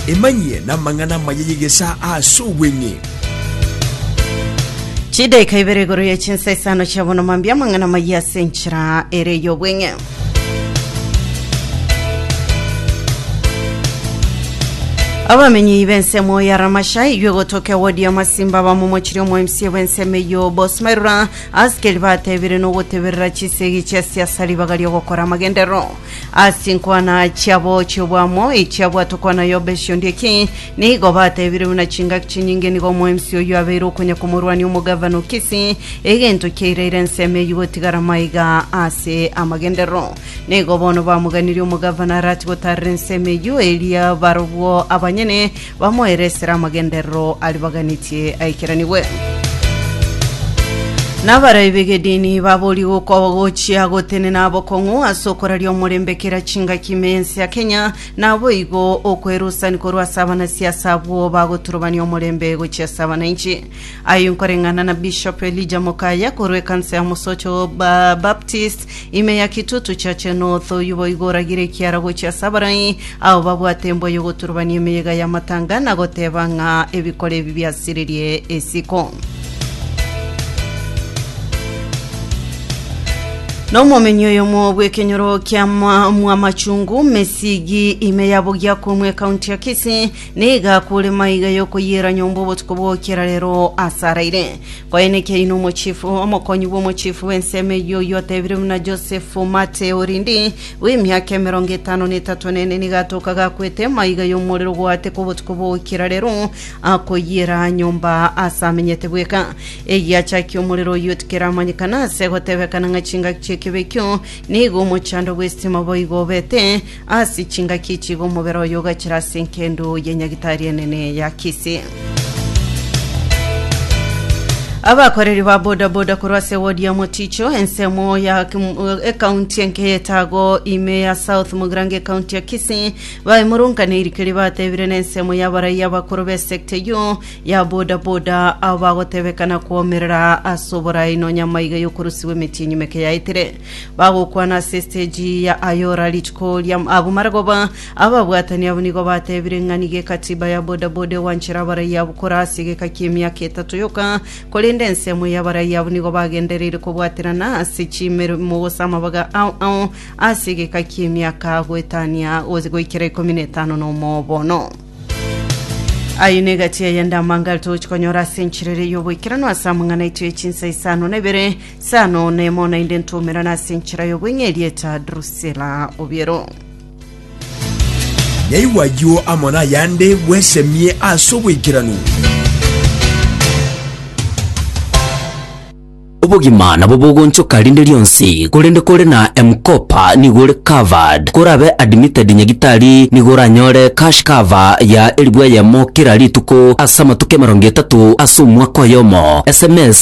Emanyie namang'ana amaya y'egesaa aase obweng'e. Chidaika ibere igoro ya chinsa isano chia bono mambia amang'ana amaya ase enchera ere y'obweng'e. abamenyi b'ensemo ya ramasha iywe gotoka ewodi ya masimba bamomochire omoemsie bw'ensemo eyo bosmerura askeri batebire nogoteberera chisegi chia siasa ribaga riogokora amagendero As'chinkwana chiabo chi'obwamo echiabwatwe kwana y'obesio ndie ki? Nigo batebire buna chingaki chinyinge nigo omwemsi oyio abeire okonya komorwania omogavana o Kisii, egento kiairaire ensemo eyio gotigara maiga ase amagenderero. Nigo bono bamoganirie omogavana arache gotarera ensemo eyio, eria barobwo abanyene Bamoere esera amagenderero aribaganitie aikeranigwe. Nabaroi b'egedini babori gokoba gochia gotenena abokong'u ase okoraria omorembe kera chingaki ime y'ense ya Kenya, naboigo okwerusani korwa ase abanasiasa abwo bagoturubania omorembe gochia ase abananchi. Ayio nkoreng'ana na Bishop Elijah Mokaya korwa ekanisa ya Mosocho ba Baptist Ime ya kitutu chache n'otoyu boigo oragira ekiara gochia ase abarai, ao babwate embwa y'ogoturubania emeyega y'amatanga, na goteba ng'a ebikoro ebi biasirerie isiko. Nomomenyi oyomo bw'ekenyoro kia mwa- mwamachungu mesigi ime ya Bogiakomwe ekaunti ya Kisii nigo akure maiga y'okoyiera nyomba obotuko bw'okera rero ase araire. Koenekia inwe omochifu, omokonyi bw'omochifu bw'ensemo eyio, oyio otebirwe buna Josefu Mateo, Orindi, bw'emiaka emerongo etano na etato nene, nigo atookaga akwete emaiga y'omorero gwaateka obotuko bw'ogokira rero, akoyiera nyomba aase amenyete bweka. Eyio achakia omorero oyio tikeramanyekana aase gotebekana ng'a chingaki chi'ekibe ekio nigo omochando bw'esitima boigo obete, Ase chingaki echi igo omobere oye ogachera ase enkendu ye nyagitari enene ya Kisii. Abakoreri ba bodaboda korwa ase wodi ya Moticho, ensemo ya kim- ekaunti enke y'etago ime ya South Mugirango ekaunti ya Kisii baimurungane irike ribatebire nensemo y'abaraiya abakoro b'esekta eyio ya bodaboda abo bagotebekana kwomerera ase oborai nonya amaiga y'okorusigwa emetienyi meke yaetire. Bagokwana ase estage ya Ayora rituko ria abwo maragoba ababwatani abwo nigo batebire ng'a nigo ekatiba ya bodaboda egwanchera abaraia abwo kora ase egeka ki'emiaka etato yoka korende ensemo y'abaraia abwo nigo bagendereire kobwaterana ase chimeremo gose amabaga ao ao ase egeka ki'emiaka goetania gose goikera ikomi na etano na omoo bono. Aye negati yayende amangare togochi konyora ase enchera ere y'oboikeranu ase amang'ana aito ye chinsa isano na ibere Sano nemo nainde ntoumerana ase enchera y'obweng'e erieta Drusela obiero. Nyaigwa ayio amo nayande bwesemie ase oboikeranu. Obogima nabo bogonchoka rinde rionsi korende kore na M-Kopa nigo ore covered. Korabe admitted nyagitari nigo oranyore cash cover ya eribu eyemo kera rituko ase amatuko emerongo etato ase omwaka oyomo. Sms